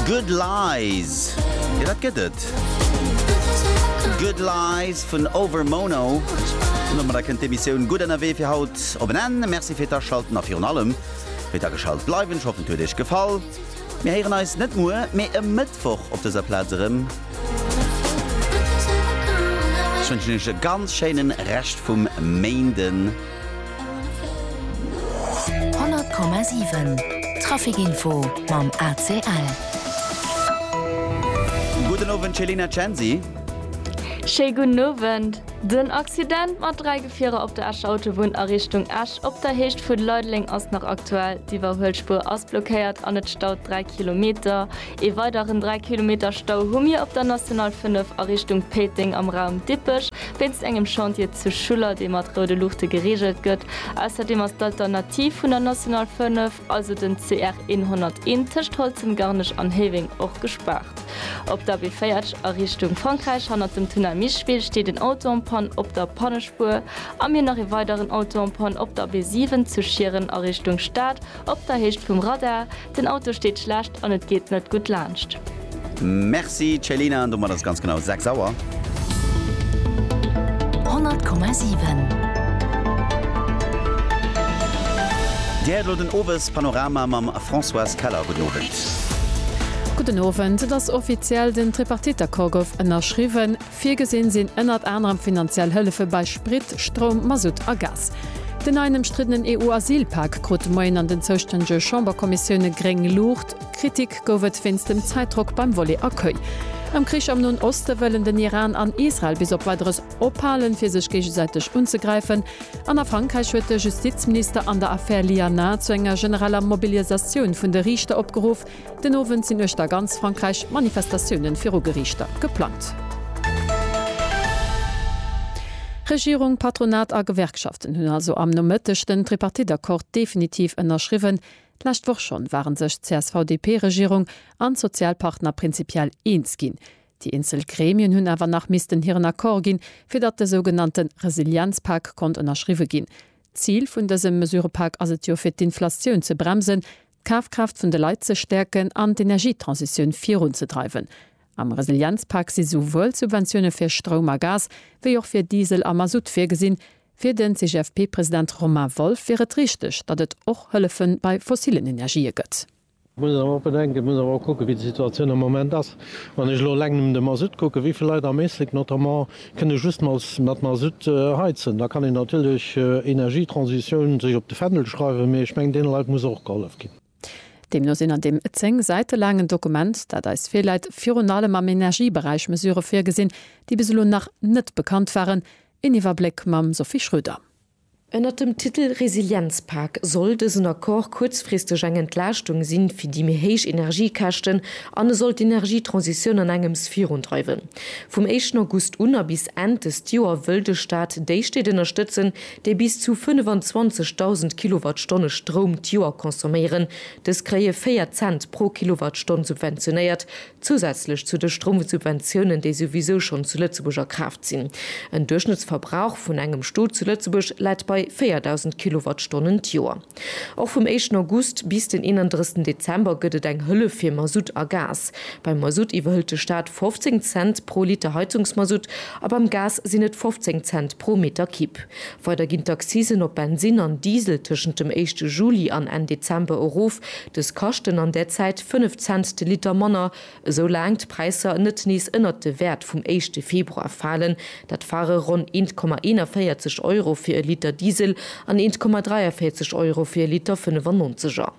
Good Lies, jo dat gëtt et. Good Lies vun Over Mono. An domadder kënnt d'Emissioun Gutt ënnerwee fir haut op en Enn. Merci fir d'Aschalten a virun allem fir d'Ageschalt bleiwen. Ech hoffen et huet iech gefall. Mir héieren eis net muer, mee e Mëttwoch op dëser Plaz erëm. Ech wënschen iech e ganz schéinen Rescht vum Méinden. 100,7 Traficinfo mam ACL. Gudden Owend Céline Censi. Schéi gudden Owend. Den Accident mat 3 Gefierer op der Escher Autobunn a Richtung Esch op der Héicht vu Leideleng ass nach aktuell. D'Iwwerhuelspuer ass blockéiert an et staut 3 Kilometer. Ee weideren 3 Kilometer Stau hu mir op der National 5 a Richtung Péiteng am Raum Dippech wéinst engem Chantier zu Schuller, dee mat roude Luuchte gereegelt gëtt. Ausserdeem ass d'Alternativ vun der National 5, also den CR 101 tëscht Holzem-Garnech an Héiweng, och gespaart. Op der B40 a Richtung Frankräich hannert dem Tunnel Micheville steet en Auto en panne op der Pannespuer a mir nach ee weideren Auto en panne op der B7 zu Schieren a Richtung Stad op der Héicht vum Radar. Den Auto steet schlecht an et geet net gutt laanscht. Merci Céline, an domat ass et ganz genau 6 Auer. 100,7. Dir héiert elo den Owespanorama mam Françoise Keller. Gudden Owend. Gudden Owend. Et ass offiziell, den Tripartite-Accord gouf ënnerschriwwen. Virgesinn sinn ënnert anerem finanziell Hëllefe bei Sprit, Stroum, Masutt a Gas. Den neien ëmstriddenen EU-Asylpak krut de Moien an den zoustännege Chamberkommissioune gréng Luucht. Kritik gouf et wéinst dem Zäitdrock beim Volet Accueil. Am Krich am Noen Oste wëllen den Iran an Israel bis op Weideres ophalen, fir sech géigesäiteg unzegräifen. An a Frankräich huet de Justizminister an der Affär Lianin zu enger genereller Mobilisatioun vun de Riichter opgeruff. Den Owend sinn uechter ganz Frankräich Manifestatiounen viru Geriichter geplangt. Regierung, Patronat a Gewerkschaften hunn also am Nomëtteg den Tripartite-Accord definitiv ënnerschriwwen. D'lescht Woch schonn waren sech d'CSV-DP-Regierung an d'Sozialpartner prinzipiell eens ginn. Déi eenzel Gremien hunn awer nach missten hiren Accord ginn, fir datt de sougenannte Resilienzpak konnt ënnerschriwwe ginn. D'Zil vun dësem Mesurepak ass et jo, fir d'Inflation ze bremsen, d'Kafkraaft vun de Leit ze stäerken an d'Energietransitioun virunzedreiwen. Am Resilienzpak si souwuel d'Subventioune fir Stroum a Gas wéi och fir Diesel a Masutt virgesinn. Fir den CGFP-President Romain Wolff wier et richteg, datt et och Hëllefe bei fossillen Energië gëtt. Et muss een awer och bedenken, et muss een awer och kucken, wéi déi Situatioun am Moment ass. Wann ech elo eleng nëmmen de Masutt kucken, wéi vill Leit am Éislek notamment Kënn ee just mat Mazout heizen, da kann een natierlech Energietransitioun sech op de Fändel schreiwen, mee ech mengen, deene Leit muss och gehollef ginn. Deemno sinn an deem zéng Säite laangen Dokument, dat eis virläit, virun allem am Energieberäich Mesurë virgesinn, déi bis elo nach net bekannt waren. Een Iwwerbléck mam Sophie Schröder. Ënnert dem Titel Resilienzpak soll dësen Accord kuerzfristeg eng Entlaaschtung si fir déi méi héich Energiekäschten an e soll d'Energietransitioun an engems virundreiwen. Vum éischten August un a bis Enn dëst Joer wëll de Staat déi Stied ënnerstëtzen, déi bis zu 25.000 Kilowattstonne Stroum d'Joer consomméieren. Dës kréie 4 Cent pro Kilowattstonn subventionéiert, Zousätzlech zu de Stroumsubventiounen, déi souwisou schonn zu Lëtzebuerg a Kraaft sinn. En Duerchschnëttsverbrauch vun engem Stot zu Lëtzebuerg läit bei 4.000 Kilowattstonnen d'Joer. Och vum éischten August bis den 31 Dezember gëtt et eng Hëllef fir Masutt a Gas. Beim Masutt iwwerhëlt de Staat 15 Cent pro Liter Heizungsmasutt a beim Gas sinn et 15 Cent pro Meter Kibb. Weider ginn d'Accisen op Bensin an Diesel tëschent dem éischte Juli an Enn Dezember erof. Dës kaschten an där Zäit 5 Cent de Liter manner, esou laang d'Präisser net nees ënnert de Wäert vum éischte Februar falen. Dat ware ronn 1,41 Euro fir e Liter Diesel an 1,43 Euro fir e Liter 95er.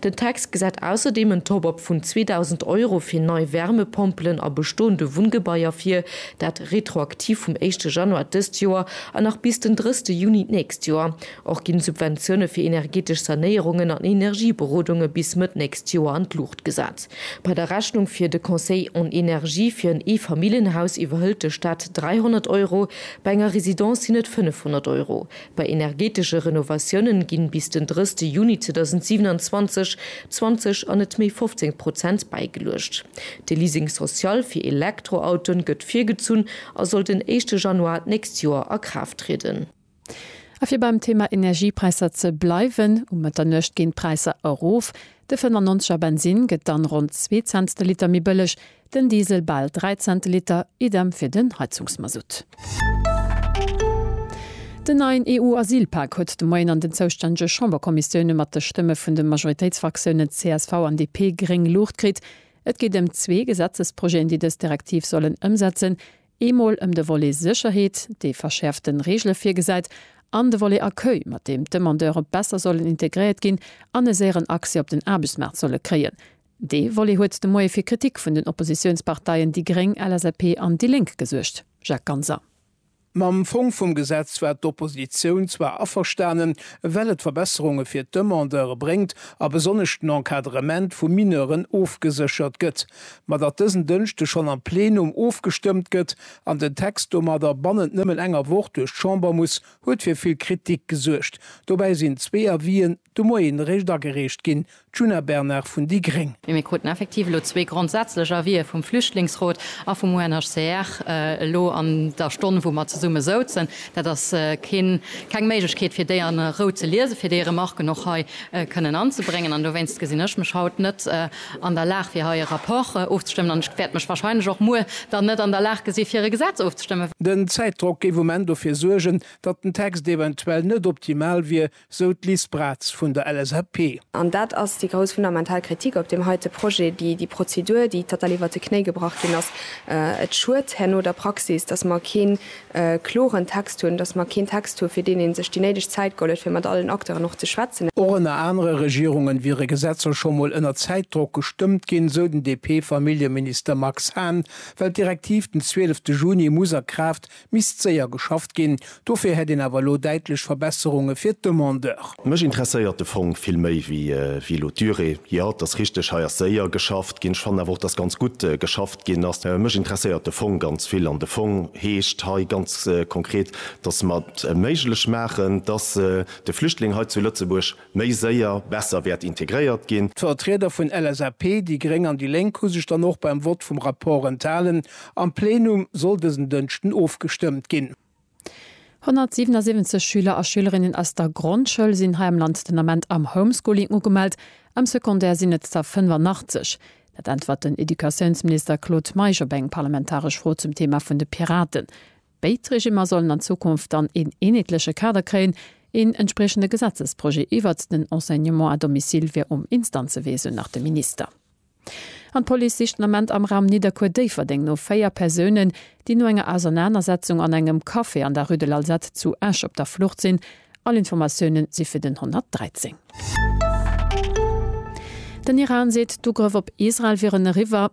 Den Text gesäit ausserdeem en Top-Up vun 2.000 Euro fir nei Wärmepompelen a bestoende Wunngebaier vir, dat retroaktiv vum éischte Januar dëst Joer an nach bis den drësste Juni d'nächst Joer. Och ginn d'Subventioune fir energetesch Sanéierungen an Energieberodunge bis Mëtt nächst Joer an d'Luucht gesat. Bei der Rechnung fir de Conseil en énergie fir en Eefamilljenhaus iwwerhëlt de Staat 300 Euro, bei enger Residence sinn et 500 Euro. Bei energeetesche Renovatiounen ginn bis den 30 Juni 2027 20 an net méi 15 Prozent bäigeluecht. De Leasing social fir Elektroautoen gëtt virgezunn a soll den éischte Januar d'nächst Joer a Kraaft trieden. A fir beim Thema Energiepräisser ze bleiwen, Um Mëtternuecht ginn d'Präisser erof. De 95 er Bensinn gëtt dann ronn zwee Cents de Liter méi bëlleg, Den Diesel bal 3 Cent de Liter, idem fir den Heizungsmasutt. Den neien EU-Asylpak huet de Moien an den zoustännege Chamberkommissioune mat de Stëmme vun de Majoritéitsfraktiounen csv an DP gréng Luucht kritt. Et geet ëm zwee Gesetzesprojeten, déi dës Direktiv sollen ëmsetzen, eemol ëm de Volet Sécherheet, dee verschäerfte Reegele virgesäit, an de Volet Accueil, mat deem d'Demandeure besser sollen integréiert ginn an e séieren Accès op den Aarbechtsmaart solle kréien. Dee Volet huet de Moie fir Kritik vun den Oppositiounsparteien déi gréng, LSAP an déi Lénk gesuergt. Jacques Ganser. Mam Fong vum Gesetz war d'Oppositioun zwar averstanen, well et Verbesserunge fir d'Demandeure bréngt a besonnesch den Encadrement vu Mineuren ofgeséchert gëtt. Ma datt dësen Dënschde schonn am Plenum ofgestëmmt gëtt an den Text domadder bannent nëmmen enger Woch duerch d'Chamber muss, huet fir vill Kritik gesuergt. Dobäi sinn zwee Avisen De Moien eréischt agereecht ginn, d'Djuna Bernard vun déi gréng. Mee mir kruten effektiv elo zwee grondsätzlech Avise vum Flüchtlingsrot a vum UNHCR elo an der Stonn, wou mer zesumme souzen. Dat ass keng Méiglechkeet, fir déi a Rou ze liesen, fir déi Remarken och hei kënnen anzebréngen. An dowéinst gesinn ech mech haut net an der Lag, fir hei e Rapport ofzestëmmen. An ech wäert mech warscheinlech och muer dann net an der Lag gesi fir e Gesetz ofzestëmmen. Den Zäitdrock géif um Enn dofir suergen, datt den Text eventuell net optimal wier, sou d'Liz Braz vun der LSAP. An dat ass déi grouss fundamental Kritik op deem heite Projet, déi Prozedur, déi total iwwert de Knéi gebrach ginn ass. Et schued herno der Praxis, datt mer keen kloren Text hunn, datt mer keen Text hu fir deen ee sech déi néideg Zäit geholl huet, fir mat allen Acteuren och ze schwätzen. Och ënner anere Regierunge wiere Gesetzer scho mol ënner Zäitdrock gestëmmt ginn, sou den DP-Familljeminister Max Hahn, well d'Direktiv den 12 Juni muss a Kraaft Misst séier geschafft ginn. Dofir hätt een awer elo däitlech Verbesserunge fir d'Demandeur. Mech interesséiert de Fong vill méi wéi elo d'Durée. Jo, et ass richteg, hei ass séier geschafft ginn. Ech fannen awer och, dass ganz gutt geschafft ginn ass. Mech interesséiert de Fong ganz vill. An de Fong heescht hei ganz konkret, dass mer et méiglech maachen, dass de Flüchtling hei zu Lëtzebuerg, méi séier, besser wäert integréiert ginn. D'Vertrieder vun LSAP, déi gréng an déi lénk hu sech dann och beim Vott vum Rapport enthalen. Am Plenum soll dësen Dënschden ofgestëmmt ginn. 177 Schüler a Schülerinnen aus der Grondschoul sinn hei am Land den Ament am Homeschooling ugemellt, am Secondaire sinn et der 85. Dat äntwert den Educatiounsminister Claude Meisch op eng parlamentaresch Fro zum Thema vun de Piraten. Béid Regimmer sollen an Zukunft dann een eenheetleche Kader kréien. Een entspriechende Gesetzesprojet iwwert den Enseignement à domicile wier um Instanzewee, sou nach de Minister. An d'Police sicht den Ament am Raum Nidderkuer-Déifferdeng no véier Persounen, déi no enger Ausernanersetzung an engem Café an der Rue de l'Alzette zu Esch op der Flucht sinn. All Informatioune si fir den 113. Den Iran seet, d'Ugrëff op Israel wieren eriwwer.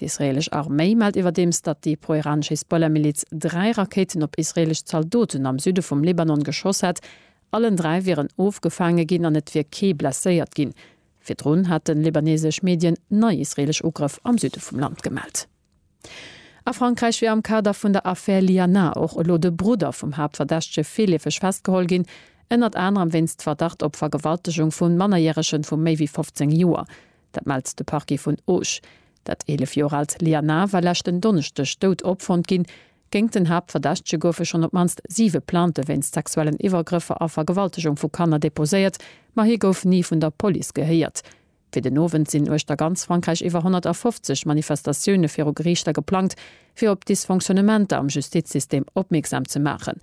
D'israeelesch Arméi mellt iwwerdeems, datt déi pro-iranesch Hisbollah-Miliz dräi Rakéiten op israeelesch Zaldoten am Süde vum Libanon geschoss hätt. Allen dräi wieren ofgefaange ginn an et wier kee blesséiert ginn. Virdrun hate libaneesesch Medien nei israeelesch Ugrëff am Süde vum Land gemellt. A Frankräich wier am Kader vun der Affär Liana och elo de Brudder vum Haaptverdächtege virleefeg festgeholl ginn, ënnert anerem wéinst Verdacht op Vergewaltegung vu Mannerjärege vu méi wéi 15 Joer. Dat mellt de Parquet vun Auch. Dat 11 Joer aalt Lianna war leschten Donneschdeg dout opfonnt ginn. Géingt den Haaptverdächtege goufe schonn op d'mannst siwe Plainte wéinst sexuellen Iwwergrëffer a Vergewaltegung vu Kanner deposéiert, ma hie gouf ni vun der Police gehéiert. Fir den Owend sinn uechter ganz Frankräich iwwer 150 Manifestatioune viru Geriichter geplangt, fir op d'Dysfonctionnementer am Justizsystem opmierksam ze maachen.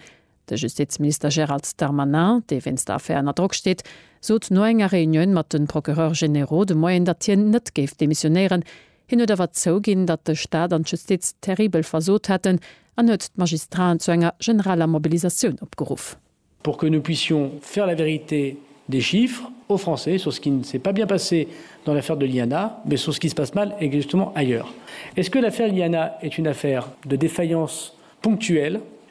De Justizminister Gérald Darmanin, dee wéinst der Affär ënner Drock steet, sot no enger Reunioun mat de Procureurs généraux de Moien, datt hien net géif demissionéieren. Hien huet awer zouginn, datt de Staat an d'Justiz terribel versot hätten an huet d'Magistraten zu enger generaler Mobilisatioun opgeruff. Pour que nous puissions faire la vérité des chiffres aux Français sur ce qui ne s'est pas bien passé dans l'affaire de l'INA, mais sur ce qui se passe mal exactement ailleurs. Est-ce que l'affaire Iliana est une affaire de défaillance ponctuelle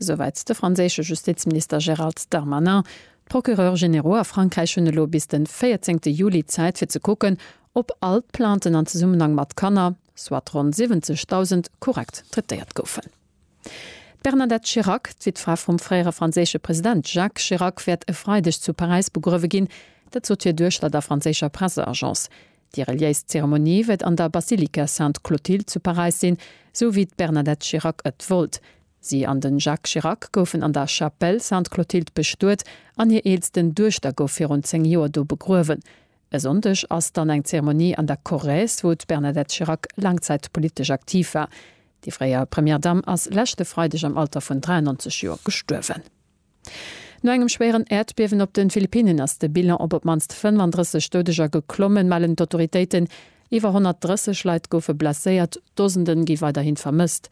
Esouwäit de franséische Justizminister Gérald Darmanin. D'Procureurs généraux a Frankräich hunn elo bis de 14 Juli Zäit fir ze kucken, ob all d'Plainten an Zesummenhang mat Kanner, soit ronn 70.000, korrekt traitéiert goufen. D'Bernadette Chirac, d'Wittfra vum fréiere franséische President Jacques Chirac, wäert e Freideg zu Paräis begruewe ginn. Dat sot hir Duechter der franséischer Presseagence. Déi reliéis Zeremonie wëtt an der Basilika Sainte Clotilde zu Paräis sinn, sou wéi d'Bernadette Chirac ët wollt. Si an den Jacques Chirac goufen an der Chapelle Sainte Clotilde bestuet an hir eelsten Duechter gouf virun 10 Joer do begruewen. E Sonndeg ass dann eng Zeremonie an der Corrèze, wou d'Bernadette Chirac laang Zäit politesch aktiv war. Déi fréier Première Dame ass leschte Freideg am Alter vun 93 Joer gestuerwen. No engem schwéieren Äerdbiewen op de Philippinnen ass de Bilan op op d'mannst 35 Doudeger geklommen, mellen d'Autoritéiten. Iwwer 130 Leit goufe blesséiert, Dosende gi weiderhi vermësst.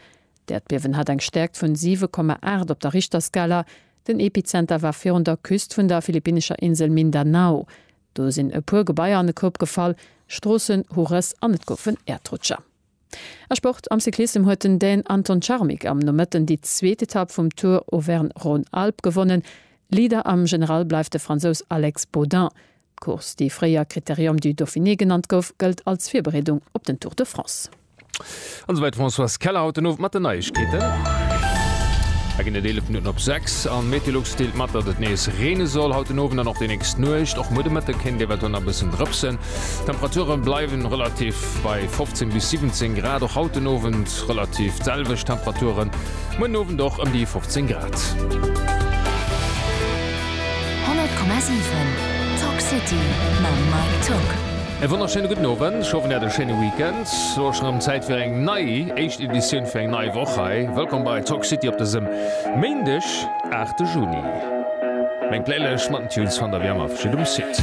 D'Äerdbiewen hat eng Stäerkt vun 7,8 op der Richterskala. Den Epizenter war virun der Küst vun der philippinnescher Insel Mindanao. Do sinn e puer Gebaier an e Koup gefall, Stroossen hu Rëss an et goufen Äerdrutscher. A Sport, Am Cyclissem huet den Dän Anton Czarmik am Nomëtten déi zweet Etapp vum Tour Auvergne-Rhône-Alpes gewonnen. Leader am General bleift de Fransous Alex Baudin. D'Course, déi fréier Critérium du Dauphiné genannt gouf, gëllt als Virbereedung op den Tour de France. An esou weit d'Françoise Keller haut den Owend mat den Neiegkeeten. Et ginn et 11 Minutten op 6 a Meteolux deelt mat, datt et nees reene soll haut den Owend an och déi nächst Nuecht. Och muer de Mëtte kéint et eventuell nach e bëssen drëpsen. D'Temperature bleiwe relativ bei 15 bis 17 Grad, och haut den Owend relativ d'selwecht Temperaturen, muer den Owend och ëm déi 15 Grad. 100,7 Talk City mam Mike Tock. E wonnerschéine gudden Owend, ech hoffen, Dir hat e schéine Weekend. Lo ass schonn erëm Zäit fir eng nei éischt Editioun fir eng nei Woch hei. Wëllkomm bei Talk City op dësem Méindeg, 8 de Juni. Meng Playlëscht mat den Tunes fannt Der wéi ëmmer virun um Site.